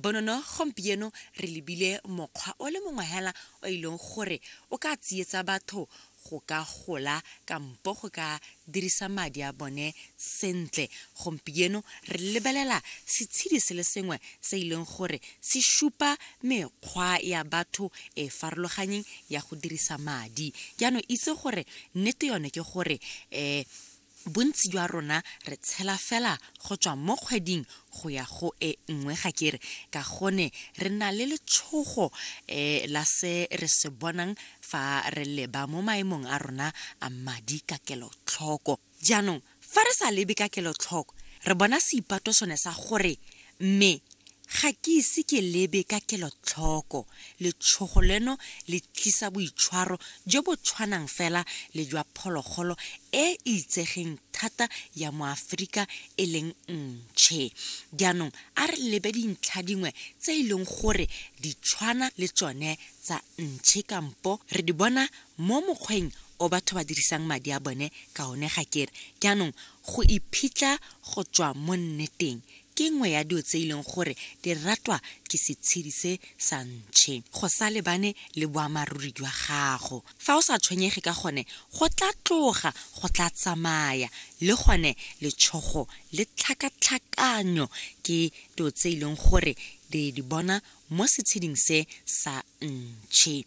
bonono gompieno re lebile mokgwa o le mongwe hela o e leng gore o ka tsietsa batho go ka gola kampo go ka dirisa madi a bone sentle gompieno re lebelela setshedi se le sengwe se e leng gore se supa mekgwa ya batho e farologanyeng ya go dirisa madi jaanong itse gore nnete yone ke gore um Bontsi jwa rona re tshela fela go tswa mo kgweding go ya go e nngwe ga kere ka gone re na le letshogo e, la se re se bonang fa re leba mo maemong a rona a madi ka kelotlhoko. Jaanong fa re sa lebe ka kelotlhoko re bona seipato sone sa gore mme Ga ke ise ke lebe ka kelotlhoko letshogo leno le tlisa boitshwaro jo bo tshwanang fela le jwa phologolo e e itsegeng thata ya mo Aforika e leng ntšhe. Jaanong a re lebe dintlha dingwe tse e leng gore di tshwana le tsone tsa ntšhe kampo re di bona mo mokgweng o batho ba dirisang madi a bone ka one ga ke re. Jaanong go iphitlha go tswa mo nneteng ke nngwe ya dio tse e leng gore di ratwa ke setshedi se sa ntšhe go sa lebane le boamaruri jwa gago fa o sa tshwenyege ka gone go tla tloga go tla tsamaya le gone letshogo le tlhakatlhakanyo ke dio tse e leng gore di di bona mo setsheding se sa ntšhe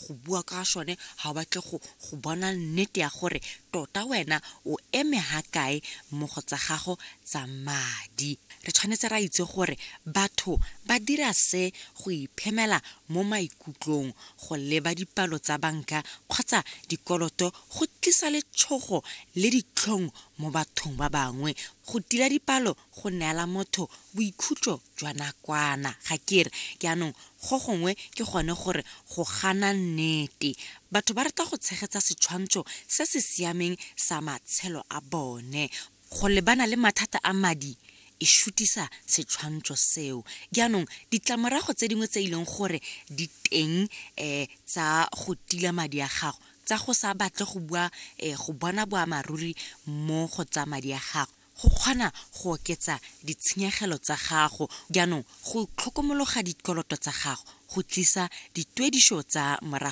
go bua ka sone ga o batle go go bona nnete ya gore tota wena o eme ga kae mo go tsa gago tsa madi re tshwanetse ra itse gore batho ba dira se go iphemela mo maikutlong go leba dipalo tsa banka kgotsa dikoloto go tlisa letshogo le ditlhong mo bathong ba bangwe go tila dipalo go neela motho boikhutso jwa nakwana. Ga ke re jaanong go gongwe ke gone gore go gana nnete. Batho ba rata go tshegetsa setshwantsho se se siameng sa matshelo a bone. Go lebana le mathata a madi e shutisa setshwantsho seo. Jaanong ditlamorago tse dingwe tse e leng gore di teng tsa go tila madi a gago, tsa go sa batle go bua, go bona boammaaruri mo go tsa madi a gago, go kgona go oketsa ditshenyegelo tsa gago. Jaanong go tlhokomologa dikoloto tsa gago go tlisa dituedišo tsa morago.